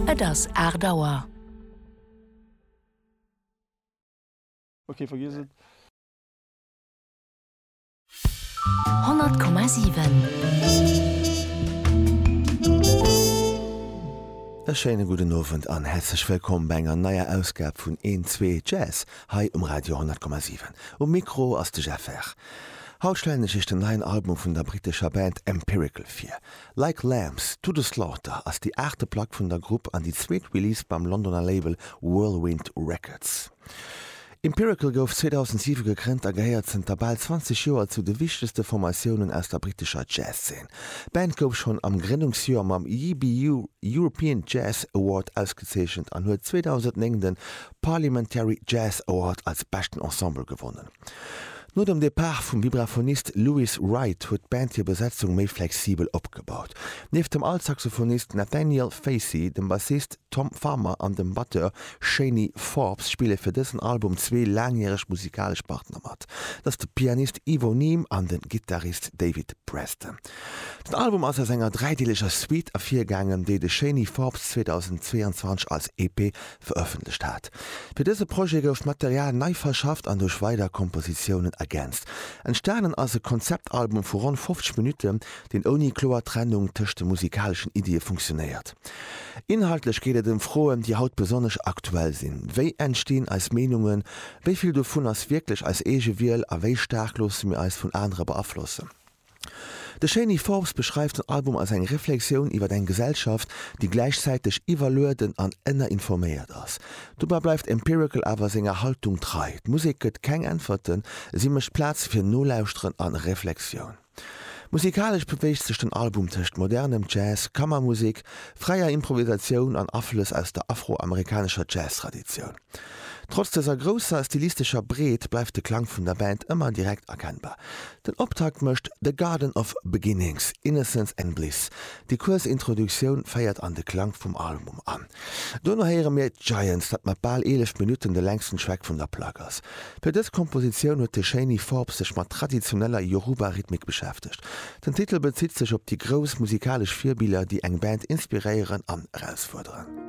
Et ass aacht Auer. Ok vergiess et. Honnert Komma sieben. E schéine gudden Owend an häerzlech wëllkomm bei enger neier Ausgab vun Een, Zwee, Jazz hei um Radio 10,7. Um Mikro ass de Jeff Herr. Haut stellen ech Iech den neien Album vun der brittescher Band Empirical vir. Like Lambs to the Slaughter ass déi aachte Plack vun der Grupp an déi zweet Release beim Londoner Label Whirlwind Records. Empirical gouf 2007 gegrënnt a gehéiert zënter bal 20 Joer zu de wichtegste Formatiounen aus der brittescher Jazz-Zeen. D'Band gouf schonn am Grënnungsjoer mam YBU European Jazz Award ausgezeechent an huet 2009 de Parliamentary Jazz Award als beschten Ensemble gewonnen. No dem Depart vum Vibraphonist Lewis Wright huet d'Band hir Besetzung méi flexibel opgebaut. Nieft dem Altsaxophonist Nathaniel Facey, dem Bassist Tom Farmer an dem Batteur Shani Forbes spille fir dësen Album zwee laangjäreg musikalesch Partner mat. Dat ass de Pianist Ivo Neame an de Gittarist David Preston. Den Album ass aus enger dräideeleger Suite ervirgaangen, déi de Shani Forbes 2022 als EP verëffentlecht hat. Fir dëse Projet gouf d'Material nei verschafft an duerch weider Kompositiounen ergänzt. Entstanen ass e Konzeptalbum vu ronn 50 Minutten, deen ouni kloer Trennung tëscht de musikaleschen Iddie funktionéiert. Inhaltlech geet et ëm Froen, déi haut besonnesch aktuell sinn, Wéi entstinn eis Meenungen? Wéi vill dovun ass wierklech eis eege Wiel? A wéi staark loosse mir eis vun anere beaflossen? De Shani Forbes beschreift den Album als eng Reflexioun iwwer eng Gesellschaft, déi gläichzäiteg iwwerlueden an ënnerinforméiert ass. Dobäi bleift Empirical awer senger Haltung trei, d'Musek gëtt keng Äntwerten, si mécht Plaz fir Nolauschteren a Reflexioun. Musikalesch beweegt sech den Album tëscht modernem Jazz, Kammermusek, fräier Improvisatioun an Aflëss aus der afro-amerikanescher Jazztraditioun. Trotz dëser grousser stilistescher Breet bleift de Klang vun der Band ëmmer direkt erkennbar. Den Optakt mécht The Garden of Beginnings, Innocence and Bliss. Déi kuerz Introduktioun féiert an de Klang vum Album an. Dono héiere mir Giants, dat mat bal 11 Minutten de längsten Track vun der Plack ass. Fir dës Kompositioun huet de Shani Forbes sech mat traditioneller Yoruba-Rhythmik beschäftegt. Den Titel bezitt sech op déi grouss musikalesch Virbiller, déi eng Band inspiréieren an erausfuerderen.